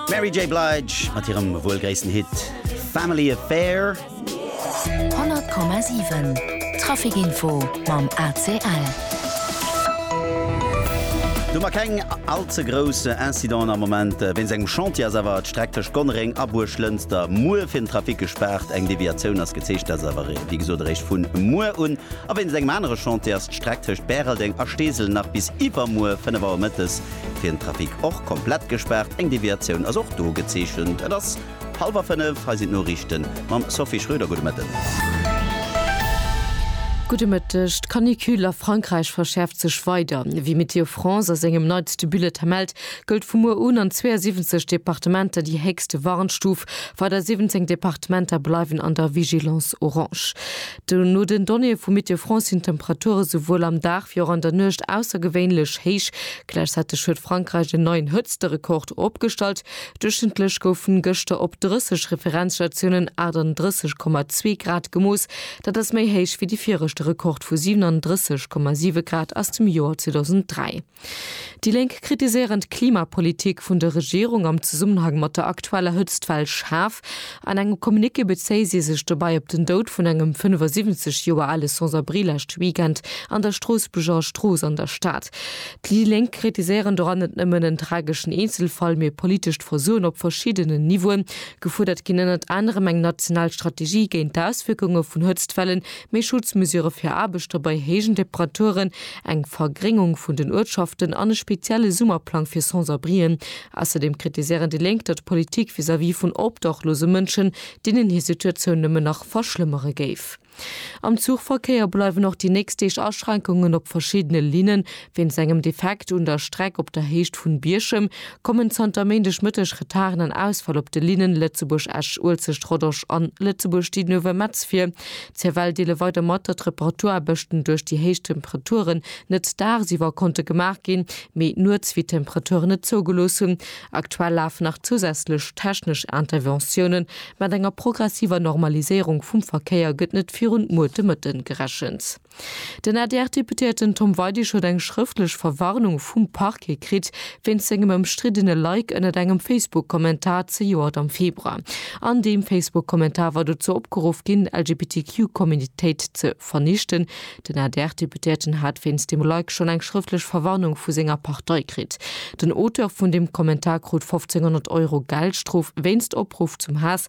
D'Mary J. Blige mat hirem wuel gréissten Hit Family Affair. 100,7 Traficinfo mam ACL. Do mar keng all ze grouss Incidenten am Moment wéinst engem Chantier ass awer d'Streck tëscht Gonnereng a Buerglënster muer fir den Trafic gespaart. Eng Deviatioun ass gezeechent, dat ass awer wéi gesot eréischt vun muer un. A wéinst engem anere Chantier ass d'Streck tëscht Bäreldeng a Steesel nach bis iwwermuer 5 Auer mëttes fir den Trafic och komplett gespaart. Eng Deviatioun ass och do gezeechent. Et ass hallwer 5, hei sinn d'Noriichte mam Sophie Schröder. Gudde Mëtten. Gudde Mëtteg. D'Canicule a Frankräich verschäerft sech weider. Wéi Météo France a sengem neitste Bulletin mellt, gëllt vu muer un an 72 Departementer déi héchste Warnstuf. Weider 17 Departementer bleiwen an der Vigilance orange. No den Donnéeë vu Météo France sinn d'Temperature souwuel am Dag wéi och an der Nuecht aussergewéinlech héich. Gläichzäiteg huet Frankräich en neien Hëtzterekord opgestallt. Duerchschnëttlech goufen gëschter op 30 Referenzstatiounen 38,2 Grad gemooss. Dat ass méi héich wéi de viregte Rekord vu 37,7 Grad aus dem Joer 2003. Déi Lénk kritiséieren d'Klimapolitik vun der Regierung am Zesummenhang mat der aktueller Hëtztwell schaarf. An engem Communiqué bezéie si sech dobäi op den Doud vun engem 75 Joer ale Sans-abri lescht Weekend an der Stroossbuerger Strooss an der Stad. Déi Lénk kritiséieren doran net nëmmen en trageschen Eenzelfall, mee politescht Versoen op verschiddenen Niveauen. Gefuerdert ginn ënnert anerem eng national Strategie géint d'Auswierkunge vun Hëtztwellen, méi Schutzmesure fir Aarbechter bei héijen Temperaturen, eng Vergréngung vun den Uertschaften an e spezielle Summerplang fir Sans-abrien. Ausserdeem kritiséieren déi Lénk, datt d'Politik vis-à-vis vun obdachlose Mënschen deenen hir Situatioun nëmmen nach verschlëmmere géif. Am Zuchverkéier bleiwen och déi nächst Deeg Aschränkungen op verschiddene Linnen, Wéinst engem Defekt un der Streck op der Héicht vun Bierchem kommen zanter Méindeg Mëtteg Retarden an Ausfäll op de Linnen Lëtzebuerg-Esch, Uelzecht-Rodange an Lëtzebuerg-Didenove-Metz vir. CFL deele weider mat, datt d'Reparaturaarbechten duerch déi héich Temperaturen net dagsiwwer konnte gemaach ginn, mee nuets, wéi d'Temperaturen et zougelooss hunn. Aktuell lafen nach zousätzlech technesch Interventiounen, mat enger progressiver Normaliséierung vum Verkéier gëtt net virun muer de Mëtten gerechent. Den ADR-Deputéierten Tom Weidig huet eng schrëftlech Verwarnung vum Parquet kritt, wéinst sengem ëmstriddene Like ënnert engem Facebook-Kommentar zejoert am Februar. An deem Facebook-Kommentar war dozou opgeruff ginn, LGBTQ-Communitéit ze vernichten. Den ADR-Deputéierten hat wéinst deem Like schonn eng schrëftlech Verwarnung vu senger Partei kritt. Den Auteur vun deem Kommentar krut 1.500 Euro Geldstrof wéinst Opruff zum Haass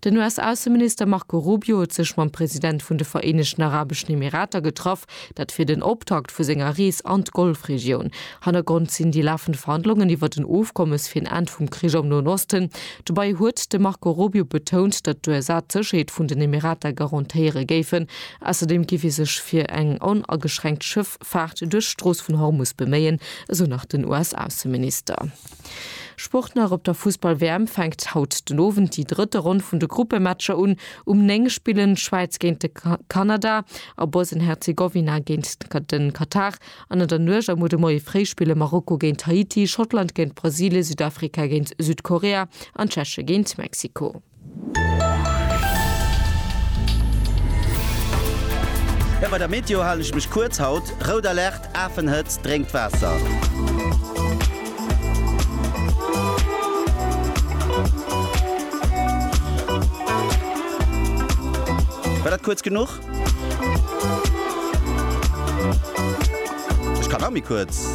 Den US-Ausseminister Marco Rubio huet sech mam President vun de Vereenegten Arabeschen Emirater getraff, dat fir den Optakt vu senger Rees an d'Golfregioun. Hannergrond sinn déi lafend Verhandlungen iwwer den Ofkommes fir en Enn vum Krich am Noen Osten. Dobäi huet de Marco Rubio betount, datt d'USA d'Sécherheet vun den Emirater garantéiere géifen. Ausserdeem géif ee sech fir eng onageschränkt Schëffahrt duerch d'Strooss vun Hormus beméien, esou nach den US-Ausseminister. Sport nach op der Fussball-WM fänkt haut den Owend déi drëtte Ronn vun de Gruppematcher un. Um 9 spillen d'Schwäiz géint de Kanada a Bosnien-Herzegowina géint de Katar. An an der Nuecht a muer de Moie fréi spille Marokko géint Haiti, Schottland géint Brasilien, Südafrika géint Südkorea an d'Tscheche géint Mexiko. Jo bei der Meteo halen ech mech kuerz haut. Rout Alerte, Afenhëtzt, drénkt Waasser. War dat kuerz genuch? Ech kann nach méi kuerz.